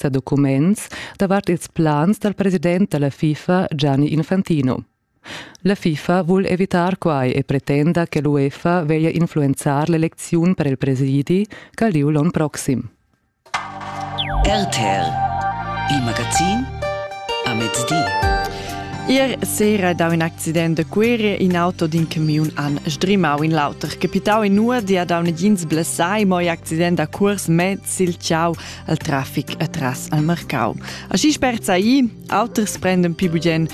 sa documents davart ils plans dal president da la FIFA Gianni Infantino. La FIFA vul evitar quai e pretenda che l'UEFA veglia influenzar l'elecziun per il presidi ch'ha lieu l'onn proxim. RTL, il magazin a mezdi. Ier sera da un accident de curie in auto d'in camiun an sdrimau in l'auter. Capitau in nur, dia da un gins blessai, mo accident a curs me sil ciau. al traffic atras al marcau. Aschi spert sai, auters prenden più bugen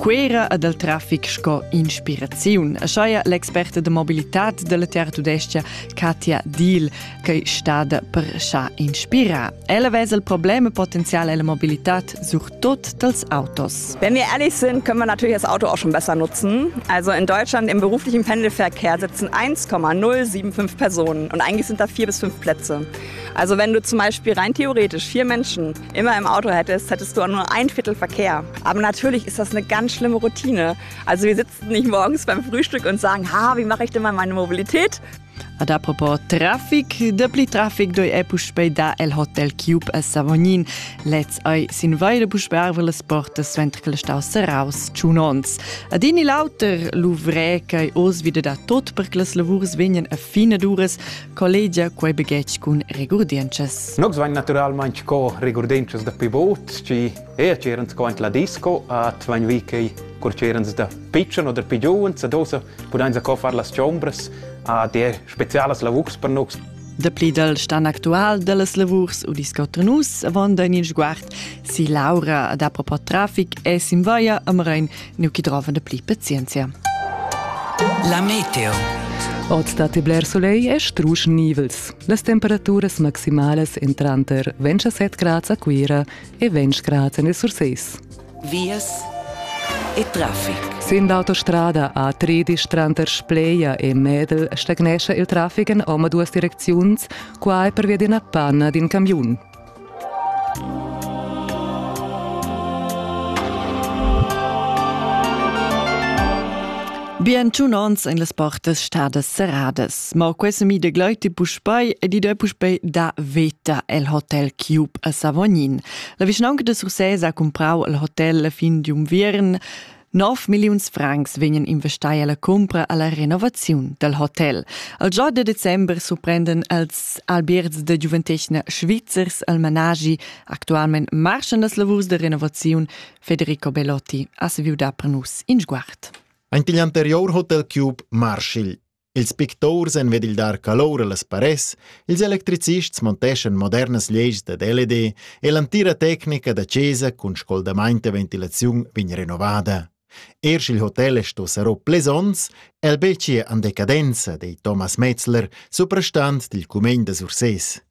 Quera e dal traffic sco inspiraziun. Schaia l'experta de mobilitat della Terra Tudestia Katja Diel che stada per scha inspira. Ella vesa il problema potenziale della mobilitat surtut dels autos. Wenn wir ehrlich sind, können wir natürlich das Auto auch schon besser nutzen. Also in Deutschland im beruflichen Pendelverkehr sitzen 1,075 Personen und eigentlich sind da vier bis fünf Plätze. Also wenn du zum Beispiel rein theoretisch vier Menschen immer im Auto hättest, hättest du nur ein Viertel Verkehr. Aber natürlich ist das eine ganz schlimme Routine. Also wir sitzen nicht morgens beim Frühstück und sagen, ha, wie mache ich denn mal meine Mobilität? Ad apropos Traffic, dapli traffic doi è puspei da el Hotel Cube a Savognin. Lez ai sin vaire puspei arve las portas ventre che stau seraus ciunons. Ad ini lauter luvré ch'ei os wieder da tot per che las lavurs vegnan a fine duras, collegia quei baghetg cun regurdientschas. Nogs vain naturalmaing co regurdientschas da pi vot, schi e c'erans co la disco, at vain vi chei cur c'erans da pitschen oder pi giuvens, ad osa pudains a co far las chombras, a der spezialas lavurs per nogs. Da pli dal stan actual da las lavurs u discotra nus avonda in il sguard si Laura ad apropos trafic e simvaia a Mrein nu chi drovan da pli pazienzia. La meteo. Oz dat il bler soleil e strusch nivels. Las temperaturas maximalas en tranter 27 grads a Cuira e 20 grads en il Surseis. Vias e traffic. Sin l'autostrada A13 tranter Spleia e Medel stagnescha il traffic en omaduas direcziuns, quai pervia d'ina panna d'in camiun. Bien tun ans en las portas stadas serradas, ma questa mi de gleuti puspei ed ide puspei da veta el hotel Cube a Savognin. La vischnaunca de Sursés ha comprau al hotel la fin di unviern 9 milliuns francs vegnan investai alla cumpra alla renovaziun dal hotel. Al già de december surprenden els albierts de giuventetgna svizzers al managi actualment marschan das lavurs de renovaziun Federico Belotti ha saviu dar per nus in sguard. Ein pigl anterior hotel cube Marshall Ils picturs en ved il dar calor allas paress, ils electricists monteschan modernas leis dad LED e l'antira tecnica da chesa cun scoldamaint e ventilaziun vegn renovada. Er sch'il hotel è sto sarò plesons, el beci en decadenza, di Thomas Metzler, suprastant dil cumegn da Sursés.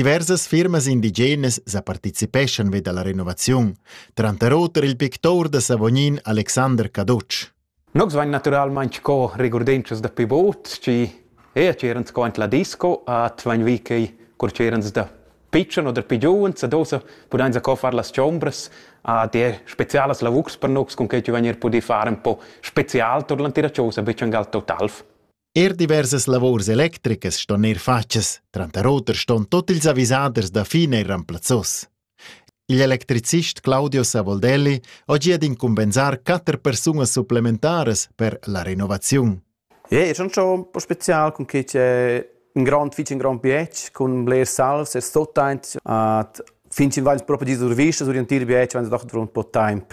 Diversas firmas indigenas sa participeschan vi dalla renovaziun, tranter oter il pictur da Savognin Alexander Cadotsch. Nogs vain naturalmaing co regurdentschas da pi bod, schi ea c'eran sco ant la disco, at vain vi quei cur c'eran da pitschen oder pi giuven, sa dosa pudain sa co far las chombras, a der spezialas lavurs per nogs, cun quei chi vain er pudì far un po spezial tot l'antira chosa, be changal totalf. Er diversas lavurs electricas ston eir fatgas, tranter oter ston tot ils avisaders da fin eir remplazzos. Il electricist Claudio Savoldelli ho gia d'incumbenzar quatter persunas supplementaras per la renovaziun. Ja, è schon schon un po' spezial con che c'è un grand fici un grand bietsch con bler salz e sottant at fin in vain proprio di survista sur in tir bietsch wenn doch drum po temp